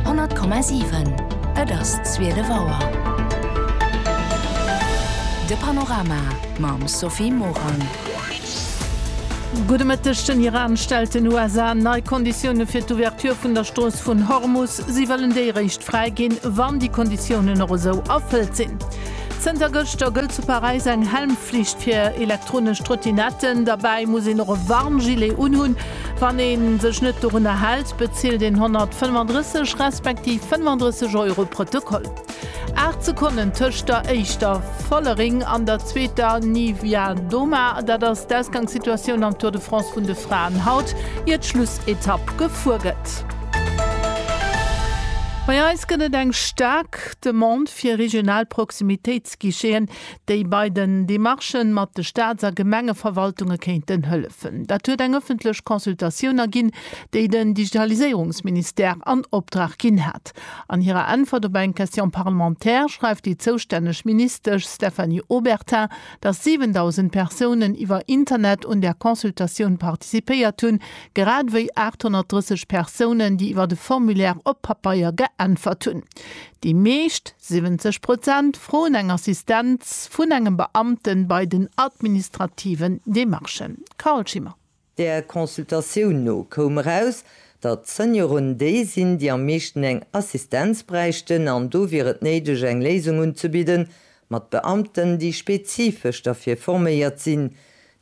100,7 Et ass zwielef Auer. De Panorama mam Sophie Morang. Gudde Mëtteg, Den Iran stellt den USA nei Konditioune fir d'Ouverture vun der Strooss vun Hormus. Si wëllen déi eréischt fräi ginn, wann déi Konditiounen och esou erfëllt sinn. Zënter gëschter gëllt zu Paräis eng Helmflicht fir elektronesch Trottinetten. Derbäi muss een och e Warngilet unhunn. Wann ee sech net dorunner hält, bezilt een 135 respektiv 35 Euro Protokoll. Aacht Sekonnen tëscht der éischter Follering an der zweeter Niewiadoma, dat ass d'Ausgangssituatioun am Tour de France vun de Fraen haut, ier d'Schlussetapp gefuer gëtt. Bei eis gëtt et eng staark Demande fir regional Proximitéitsguicheten. déi bei den Demarchen mat de Staats a Gemengeverwaltunge kéinten hëllefen. Dat huet eng ëffentlech Consultatioun erginn, déi den Digitaliséierungsministère an Opdrag ginn hat. An hirer Äntwert op eng Question parlementaire schreift déi zoustänneg Ministesch Stéphanie Obertin, datt 7.000 Persounen iwwer Internet un där Consultatioun participéiert hunn, grad ewéi 830 Persounen, déi iwwer e Formulaire op Papeier geäntwert hunn. Déi meescht. 70 Prozent froen eng Assistenz vun engem Beamte bei den administrativen Demarchen. Carole Schimmer. Der Consultatioun no koum eraus, datt d'Senioren déi sinn, déi am meeschten eng Assistenz bräichten an do wier et néideg eng Léisung unzebidden, mat Beamten, déi spezifesch derfir forméiert sinn.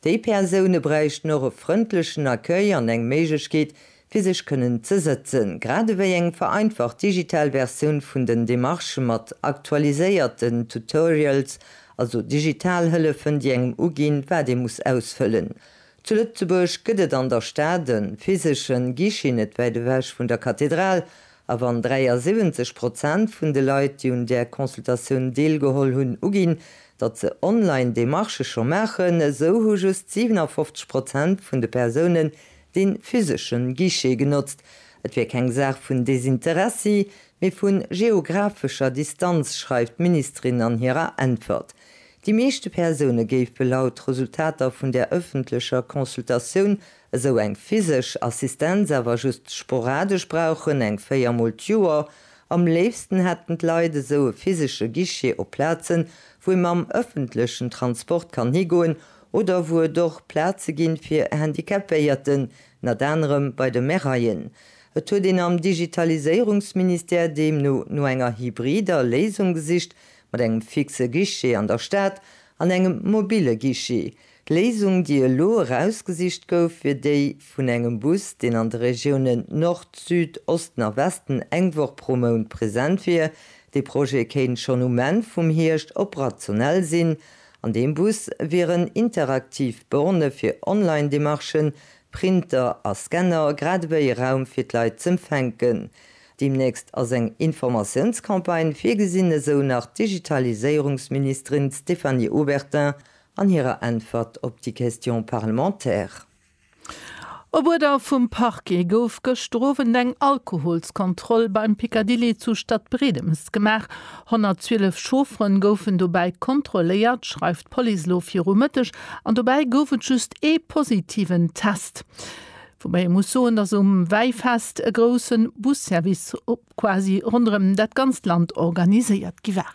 Déi Persoune bräichten och e frëndlechen Accueil an eng Méiglechkeet, fir sech kënnen ze sëtzen, grad ewéi eng vereinfacht digital Versioun vun den Demarchë mat aktualiséierten Tutorials, also digital Hëllefen, déi engem uginn, wat ee muss ausfëllen. Zu Lëtzebuerg gëtt et an der Stad e physeschen Guichet, net wäit ewech vun der Kathedral, A wann 73 Prozent vun de Leit, déi un där Consultatioun deelgeholl hunn, uginn, datt se online Demarchë scho maachen, esou hu just 57 Prozent vun de Persounen dee physesche Guichet genotzt. Et wier keng Saach vun Desinteressi, mee vu geographescher Distanz, schreift d'Ministerin an hirer Äntwert. Déi meeschte Persoune géife laut Resultater vun där ëffentlecher Consultatioun esou eng physesch Assistenz awer just sporadesch brauchen, eng véier Mol d'Joer. Am léifsten hätten d'Leit esou e physesche Guichet op Plazen, wou ee mam ëffentlechen Transport kann higoen oder wou et och Plaze ginn, fir Handicapéierten, nat anerem bei de Maireien. Et huet een am Digitaliséierungsministère deemno no enger hybrider Léisung gesicht, mat engem fixe Guichet an der Stad an engem mobile Guichet, D'Léisung, déi elo erausgesicht gouf, wier déi vun engem Bus, deen an de Regiounen Nord, Süd, Osten a Westen eng Woch pro Mount present wier. Dee Projet kéint schonn um Enn vum Hierscht operationell sinn. An deem Bus wieren interaktiv Bornë fir Online-Demarchen, Printer a Scanner, grad ewéi e Raum fir d'Leit z'empfänken. Deemnächst ass eng Informatiounscampagne virgesinn, esou nach d'Digitaliséierungsministerin Stéphanie Obertin an hirer Äntwert op déi Question parlementaire. Op Uerder vum Parquet gouf gëschter Owend eng Alkoholskontroll beim Picadilly zu Stadbredemes gemaach. 112 Chauffere goufen dobäi kontrolléiert, schreift d'Police elo viru Mëtteg, an dobäi gouf et just ee positiven Test. Woubäi ee muss soen, datt um Wäifest e grousse Busservice quasi ronderëm dat ganzt Land organiséiert gi war.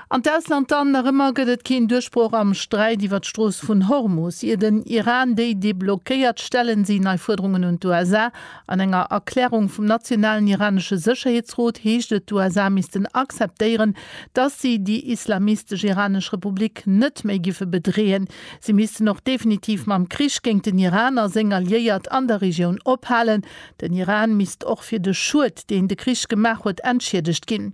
An d'Ausland dann, Nach ëmmer gëtt et keen Duerchbroch am Sträit iwwer d'Strooss vun Hormus. Ier den Iran déi deblockéiert, stellen si nei Fuerderungen un d'USA. An enger Erklärung vum nationalen iranesche Sécherheetsrot heescht et, d'USA missten acceptéieren, datt si déi islamistesch iranesch Republik net méi géife bedreeën. Si missten och definitiv mam Krich géint den Iran a seng Alliéiert an der Regioun ophalen. Den Iran misst och fir de Schued, deen de Krich gemaach huet, entschiedegt ginn.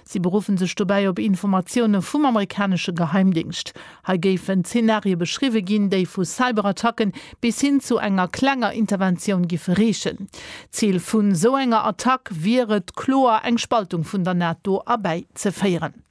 Si beruffen sech dobäi op Informatioune vum amerikanesche Geheimdingscht. Hei géifen Zenarie beschriwwe ginn, déi vu Cyberattacken bis hin zu enger klenger Interventioun giffe reechen. D'Zil vun esou enger Attack wier et kloer, eng Spaltung vun der NATO erbäi ze féieren.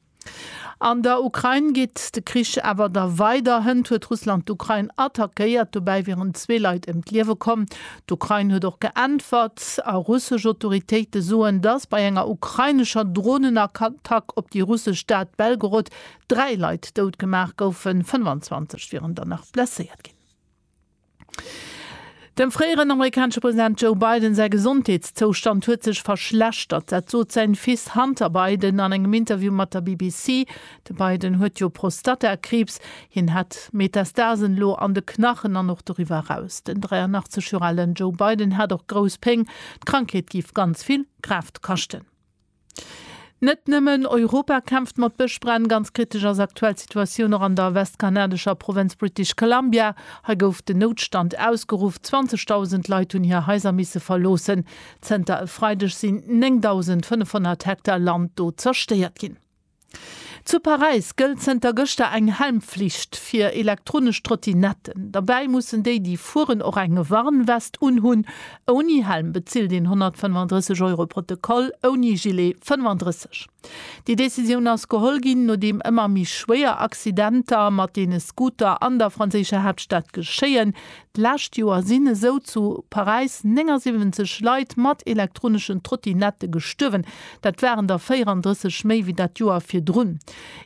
An der Ukrain geet de Krich awer der weider. Hënt huet Russland d'Ukrain attackéiert. Dobäi wieren zwee Leit ëm d'Liewe komm. D'Ukrain huet och geäntwert a russesch Autoritéite soen, dass bei enger ukrainescher Dronenattack op déi russesch Stad Belgorod dräi Leit dout gemaach goufen, 25 wieren der nach blesséiert ginn. Dem fréieren amerikanesche President Joe Biden säi Gesondheetszoustand huet sech verschlechtert. Dat sot säin Fils Hunter Biden an engem Interview mat der BBC. De Biden huet jo Prostatakriibs. Hien hätt Metastasen elo an de Knachen an och doriwwer eraus. Den 83 Joer alen Joe Biden hätt och grouss Péng. D'Krankheet géif ganz vill Kraaft kaschten. Net nëmmen Europa kämpft mat Bëschbränn. Ganz kritesch ass aktuell d'Situatioun och an der westkanadescher Provënz British Columbia. Hei gouf den Noutstand ausgeruff. 20.000 Leit hunn hir Haiser misse verloossen. Zënter e Freideg sinn 9.500 Hektar Land do zerstéiert ginn. Zu Paräis gëllt zënter gëschter eng Helmflicht fir elektronesch Trottinetten. Derbäi mussen déi, déi fueren, och eng Warnwest unhunn. Ouni Helm bezilt een 135 Euro Protokoll, ouni Gilet 35. Déi Decisioun ass geholl ginn, nodeem ëmmer méi schwéier Accidenter mat deene Scooter an der franséischer Haaptstad geschéien, D'lescht Joer sinn esou zu Paräis 79 Leit mat elektroneschen Trottinette gestuerwen. Dat waren der 34 méi wéi dat Joer virdrun.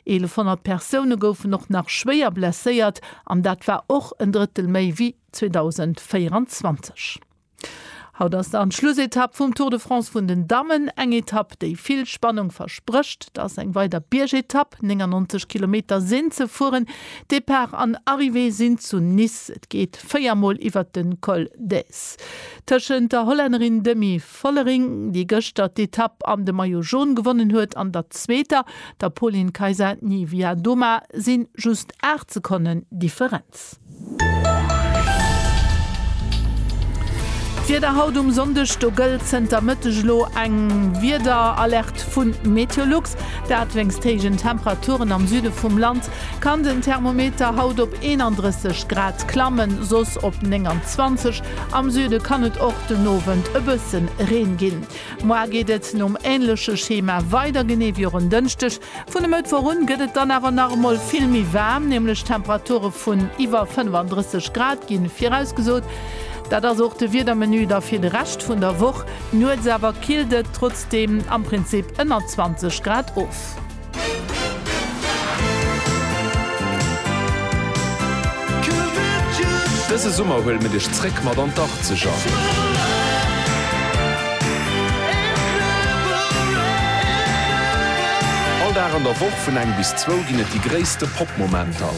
1.100 Persoune goufen och nach schwéier blesséiert an dat war och en Drëttel méi wéi 2024. Haut ass dann d'Schlussetapp vum Tour de France vun den Dammen. Eng Etapp, déi vill Spannung versprécht. Dass eng weider Biergetapp, 99 Kilometer sinn ze fueren. Depart an Arrivée sinn zu Nice. Et geet 4 mol iwwert de Col d'Èze. Tëschent der Hollännerin Demi Vollering, déi gëschter d'Etapp an de Maillot Jaune gewonnen huet, an der zweeter, der Pauline Kaisa Niewiadoma, si just 8 Sekonnen Differenz. Sätz. D'Wieder haut um Sonndeg, Do gëllt zënter Mëtteg elo eng Wiederalerte vu Meteolux. Dat wéinst héijen Temperaturen am Süde vum Land kann den Thermometer haut op 31 Grad klammen, soss op 29. Am Süde kann et och den Owend e bësse Reen ginn. Moar geet et nom änleche Schema weider, genee wéi och en Dënschdeg. Vun e Mëttwoch un gëtt et dann awer nach emol vill méi waarm, nämlech Temperature vun iwwer 35 Grad gi virausgesot. Dat ass och de Wiedermenu da fir de Rescht vun der Woch. Nuets awer killt et trotzdeem am Prinzip ënner 20 Grad of. Dëse Summer huele mir dech zréck mat an d'Achtzeger. All Dag an der Woch vun eng bis zwou ginn et déi gréisste Pop-Momenter.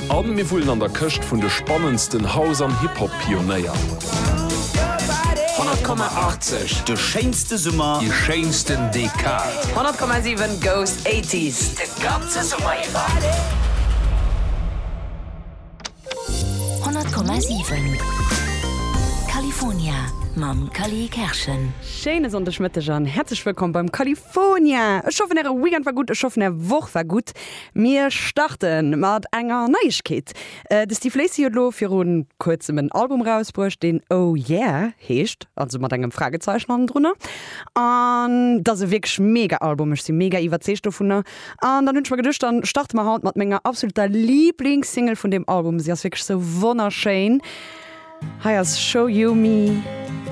A mir wullen an der Këscht vun de spannendsten House an Hip-Hop-Pionéier. 100,80, de schéinste Summer, déi schéinsten Dekad. 100,7 goes 80s, de ganze Summer iwwer. 100,7 California mam Cally Kerschen. Schéine Sonndegmëtteg an häerzlech wëllkomm beim California. Ech hoffen äre Weekend war gutt, ech hoffen är Woch war gutt. Mir starte mat enger Neiegkeet, de Steve Lacy huet elo viru kuerzem en Album erausbruecht deen Oh Yeah heescht, also mat engem Fragezeichen hannendrunner. An et ass e wierklech mega Album, ech si mega iwwerzeegt dovunner. An dann hunn ech mer geduecht, dann starte mer haut mat menger absoluter Liblingssingle vun deem Album. Si ass wierklech sou wonnerschéin. Hei ass Show You Me.